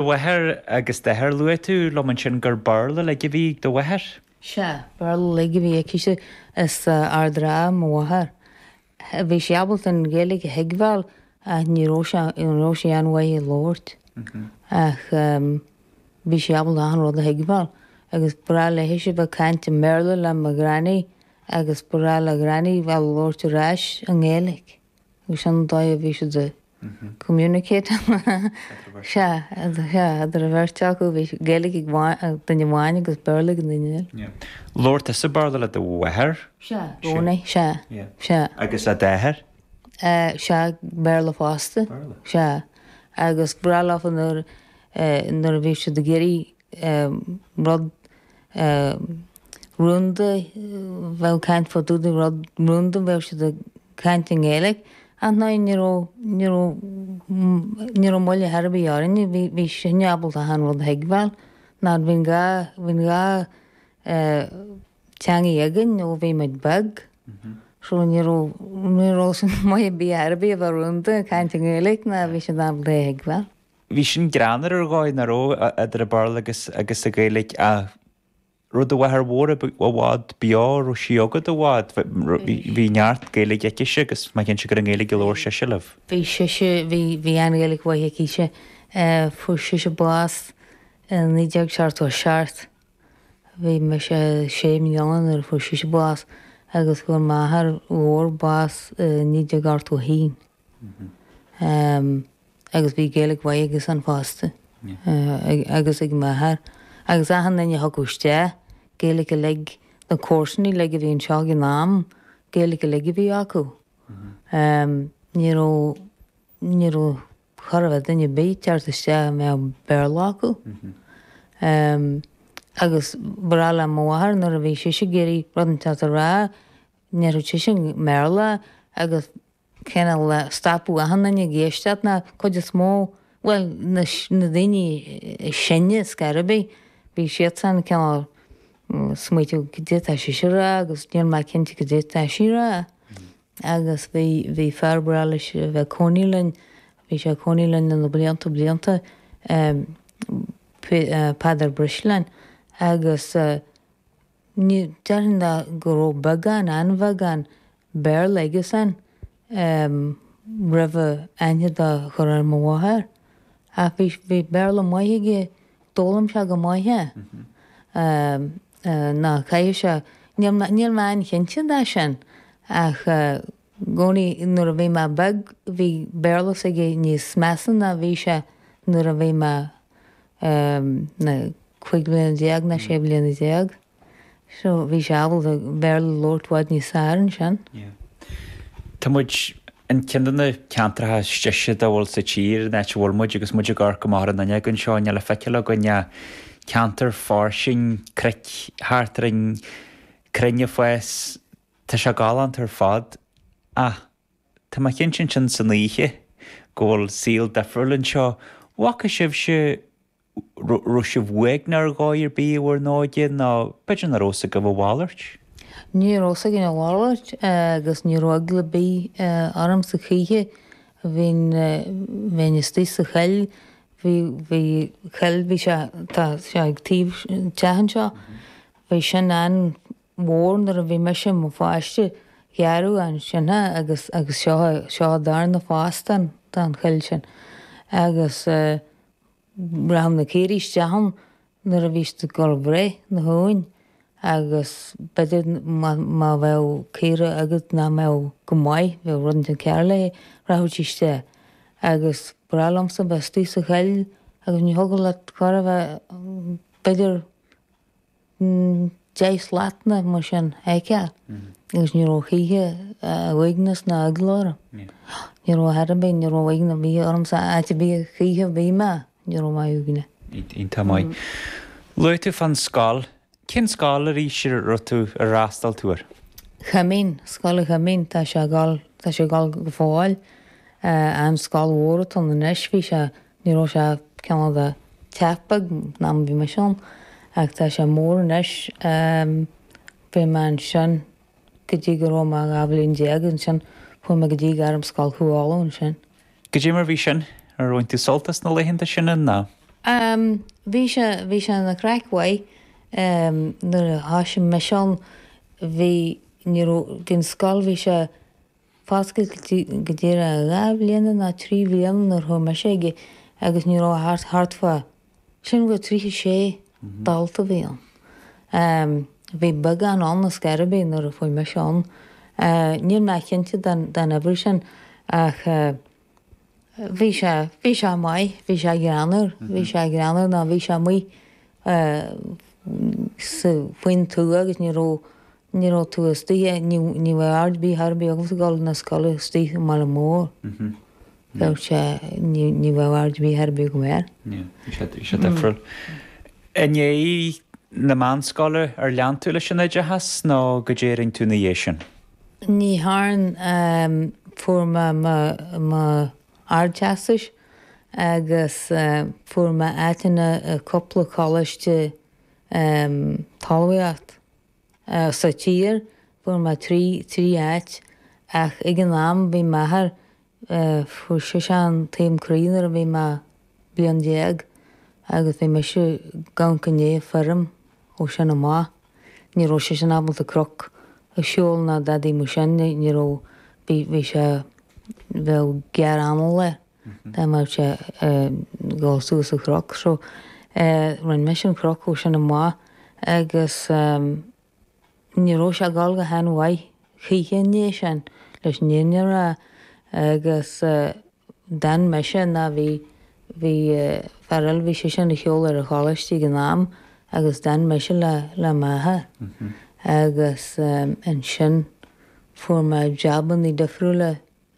Do mháthair agus d'athair luaigh tú liom ansin gur Béarla uilig a bhí ag do mháthair? Sea, Béarla uilig a bhí aici-se. As Ard an Rátha mo mháthair. Bhí sí ábalta an Ghaeilge a thuigbheáil ach ní raibh sí ní raibh sí an-mhaith ag labhairt. Ach bhí sí ábalta achan rud a thuigbheáil. Agus ba ghnách léithese a bheith ag caint i mBéarla le mo Ghranny agus ba ghnách le Granny a bheith ag labhairt ar ais i nGaeilge. Agus an dóigh a bhí siad ag communicate idir an bheirt acu bhí Gaeilge ag duine amháin agus Béarla ag an duine eile. Labhair tusa Béarla le do mháthair? Sea, i gcónaí, sea, sea. Agus le d'athair? Sea, Béarla fosta. Béarla? Sea. Agus ba ghnách leofa nuair a bhí siad ag iarraidh rud rúnda, a bheith ag caint fá dtaobh de rud rúnda, bheadh siad ag caint i nGaeilge, ach ná ní raibh, ní raibh, ní raibh moill ar bith orainne, bhí, bhí sinne ábalta achan rud a thuigbheáil, mar bhí an dhá, bhí an dhá theangaidh againn ó bhí muid beag, so ní raibh, ní raibh maith ar bith ar bith a bheith rúnda, caint i nGaeilge, ná bhí siad ábalta é a thuigbheáil. Bhí sin greannmhar ar dhóigh nach raibh idir an Béarla agus an Ghaeilge ach raibh do mháthair mhór i bhfad beo, raibh sí agat i bhfad, bhí neart Gaeilge aicise agus má dhein sí gur i nGaeilge a labhair sise libh. Bhí sise, bhí an-Ghaeilge mhaith aicise. Fuair sise bás i 1977. Bhí mise sé bliana nuair a fuair sise bás agus fuair m'athair mór bás i 1981. agus bhí Gaeilge mhaith aigesan fosta agus ag m'athair agus achan duine a thiocfadh isteach Gaeilge uilig, na comharsanaí uilig a bhí anseo ag an am, Gaeilge uilig a bhí acu. Ní raibh, ní raibh chóir a bheith duine ar bith ag teacht isteach a mbeadh Béarla acu. Agus ba ghnách le mo mháthair nuair a bhí sise ag iarraidh rud inteacht a rá, ndéarfadh sise i mBéarla agus cineál stopfadh achan nduine ag éisteacht ná cuid is mó bhuel na na daoine is sine ar scor ar bith bhí siadsan cineál ag smaoitiú caidé atá sise a rá agus níl mé cinnte caidé atá sí a rá agus bhí bhí fear ba ghnách leis a bheith ag cónaí linn bhí sé ag cónaí linn na na blianta blianta Peadar Breslin agus uh, Ní déarfainn ná go raibh beagán, an-bheagán, Béarla aige-san roimh é aithne a chur ar mo mháthair. Ach bhí, bhí Béarla maith aige, d'fhoghlaim sé go maith é. Ná caithfidh sé, níl mé, níl mé an-chinnte de sin ach gcónaí nuair a bhí mé beag, bhí Béarla s'aige níos measa ná a bhí sé nuair a bhí mé na cúig bhliana déag ná sé bhliana déag. So bhí sé ábalta Béarla labhairt bhfad níos fearr ansin. Tá muid i gceann de na ceantracha is deise dá bhfuil sa tír, an áit a bhfuil muid agus muid ag amharc amach ar an fhuinneog anseo, níl le feiceáil againn ach ceantar fairsing, cnoic thart orainn, crainn ag fás, Tá sé galánta ar fad, ach tá mé cinnte ansin san oíche go bhfuil saol difriúil anseo. Bhfaca sibhse, raibh sibh uaigneach ar dhóigh ar bith i bhur n-óige, nó b'fhéidir nach raibh a fhios agaibh a mhalairt? Ní raibh a fhios againn a mhalairt, agus ní raibh eagla ar bith ormsa choíche. Bhínn, bheinn istigh sa choill, bhí, bhí coill, bhí sé, tá sé ag taobh an teach anseo, bhí sin an, mhór nuair a bhí mise i mo pháiste, gearradh ansin í agus is é seo darna fás den choill sin agus rachadh na caoirigh isteach ann nuair a bhí siad ag dul a bhreith na huain agus b'fhéidir má bheadh caora agat nach mbeadh go maith, bheadh rud inteacht cearr léi, rachadh sí isteach agus ba bhreá liomsa a bheith istigh sa choill agus ní thiocfadh leat chor ar bith b'fhéidir. Deich slat nó mar sin a fheiceáil agus ní raibh choíche uaigneas ná eagla orm. Ní raibh chor ar bith, ní raibh uaigneas ar bith orm sa áit a bhí a choíche a bhí mé, ní raibh mé uaigneach. Iontach maith. Luaigh tú fán scoil. Cén scoil arís a raibh tú ar fhreastal tú air? Choimín, Scoil an Choimín, tá sé ag dul, tá sé ag dul go fóill. An scoil mhór atá anois, bhí sé. Ní raibh sé cineál de teach beag an am a bhí mise ann ach tá sé mór anois. Bhí mé ansin go dtí go raibh mé dhá bhliain déag. Ansin chuaigh mé go dtí Gairmscoil Chú Uladh ansin. Caidé mar bhí sin? Ar bhain tú sult as na laethanta sin an ná? Bhí sé, bhí sé ina chraic mhaith. Nuair a thosaigh mise ann bhí, ní raibh, bhí an scoil, bhí sé, Foscailte go díreach dhá bhliana ná trí bhliana nuair chuaigh mise aige agus ní raibh ach thart, thart fá sin bhfuil tríocha sé dalta a bhí ann. Bhí beagán ann ar scor ar bith nuair a chuaigh mise ann. Níl mé cinnte den uimhir sin ach. Bhí sé, bhí sé maith, bhí sé greannmhar, bhí sé greannmhar ná bhí sé amuigh sa, faoin tuath agus ní raibh, ní raibh tú istigh, ní, ní bheadh aird ar bith chor ar bith agamsa ag dul na scoile istigh i mbaile mór. Bheadh sé, ní, ní bheadh aird ar bith chor ar bith agam air. Yeah, bhí sé, bhí sé difriúil. I ndiaidh na meánscoile ar lean tú leis an oideachas nó caidé a rinne tú ina dhiaidh sin? Ní thearn fuair mé mo Ardteastas agus fuair mé áiteanna i cúpla coláiste talmhaíocht sa tír, fuair mé trí áit ach ag an am bhí m'athair Fuair seisean taom croí nuair a bhí mé bliain déag agus bhí mise ag amharc i ndiaidh an fheirm ó sin amach. Ní raibh seisean ábalta cnoc a shiúl ná dadaí mar sin, ní raibh, bhí, bhí sé, bheadh giorra anála air dá mbeadh sé ag dul suas an cnoc. So, rinne mise an cnoc ó sin amach agus. Ní raibh sé ag dul go han mhaith choíche i ndiaidh sin leis an fhírinne a rá agus d'fhan mise ná bhí bhí fear eile bhí seisean ar shiúl ar an choláiste ag an am agus d'fhan mise le le m'athair agus ansin fuair mé jobannaí difriúla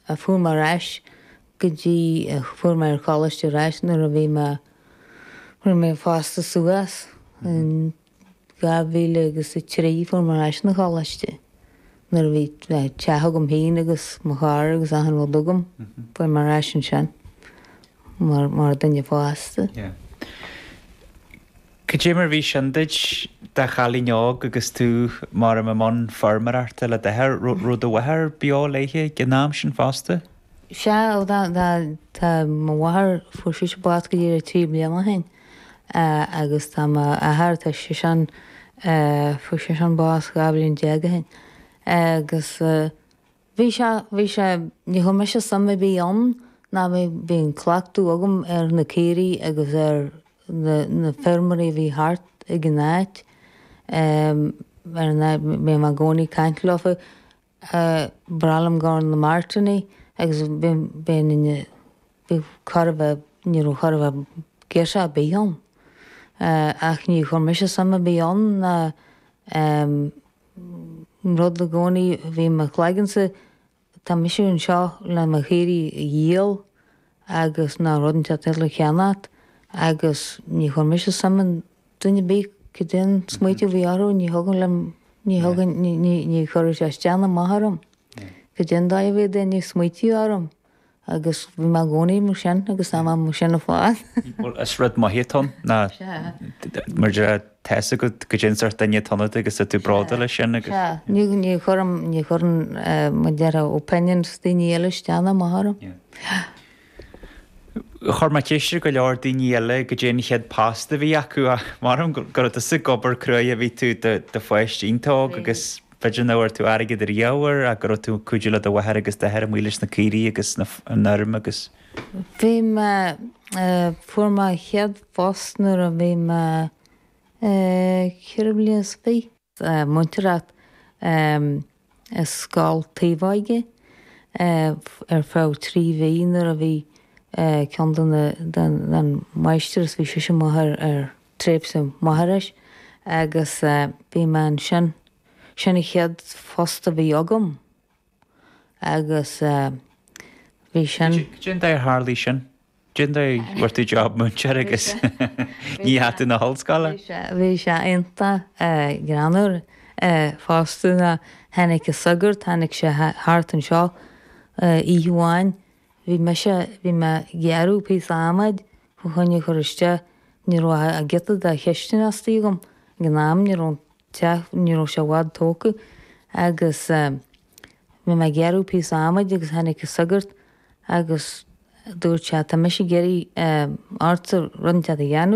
chuaigh mé ar ais go dtí chuaigh mé ar choláiste ar ais nuair a bhí mé nuair a mé fásta suas in dhá mhíle agus a trí chuaigh mé ar ais na choláiste nuair a bhí teach agam féin agus mo charr agus achan rud agam chuaigh mé ar ais ansin mar mar duine fásta. Cad é mar a bhí sin duit i do chailín óg agus tú maram i mbun feirmeoireachta le d'athair? raibh do mháthair beo léithe ag an am sin fosta? Sea, tá mo mháthair, fuair sise bás go díreach trí bliana ó shin agus tá mo athair, tá seisean, fuair seisean bás dhá bhliain déag ó shin agus. Bhí sé, bhí sé, ní chuir mise suim ar bith ann ná bhí, bhí an cleachtadh agam ar na caoirigh agus ar na, na feirmeoirí a bhí thart ag an áit, ar an áit, bhí mé i gcónaí ag caint leofa, bhreá liom a ghabháil ar na martannaí agus bhí, bhí na, bhí chóir a bheith, ní raibh chóir a bheith girseach ar bith ann ach ní chuir mise suim ar bith ann ná. An rud i gcónaí a bhí i mo chloigeannsa, tá mise anseo le mo chaoirigh a dhíol agus nó rud inteacht eile a cheannacht agus ní chuir mise suim i nduine ar bith cad é an smaoiteamh a bhí orthu, ní thugann liom, ní thugann, ní chuireann sé isteach ná amach orm cad é an dóigh a mbíonn daoine ag smaoiteamh orm. agus bhí mé i gcónaí mar sin agus tá mé mar sin fad. Bhuel, is rud maith atá ann ná mar a déarfá tá a fhios agat cad é an sórt duine atá ionat agus tá tú bródúil leis sin agus. Sea, ní chuireann, ní chuireann mar a déarfá opinions daoine eile isteach ná amach orm. Chuir mé ceist ar go leor daoine eile cad é an chéad phost a bhí acu ach maram go raibh tusa ag obair cruaidh ó bhí tú i do pháiste iontach óg agus B'fhéidir nach bhfuair tú airgead ar gheamhar ach go raibh tú ag cuidiú le do mháthair agus d'athair amuigh leis na caoirigh agus an fheirm agus. Bhí mé, fuair mé an chéad phost nuair a bhí mé ceithre bliana is fiche. Múinteoireacht i Scoil Taobhóige ar feadh trí mhí nuair a bhí ceann de na máistreás bhí sise amuigh ar. Tréimhse máithreachais agus bhí mé ansin. Sin an chéad phost a bhí agam agus bhí sin. Cén dóigh ar tharlaigh sin? Cén dóigh a bhfuair tú job múinteoir agus ní dheachaidh tú na hollscoile? Bhí sé iontach greannmhar fosta nó tháinig an sagart, tháinig sé thart anseo oíche amháin Bhí mise, bhí mé ag gearradh píosa adhmaid fá choinne a chur isteach, ní raibh ach giota de chistin astoigh agam ag an am, ní raibh an teach, ní raibh sé i bhfad tógtha agus eh bhí mé ag gearradh píosa adhmaid agus tháinig an sagart agus dúirt sé tá mise ag iarraidh eh ortsa rud inteacht a dhéanamh.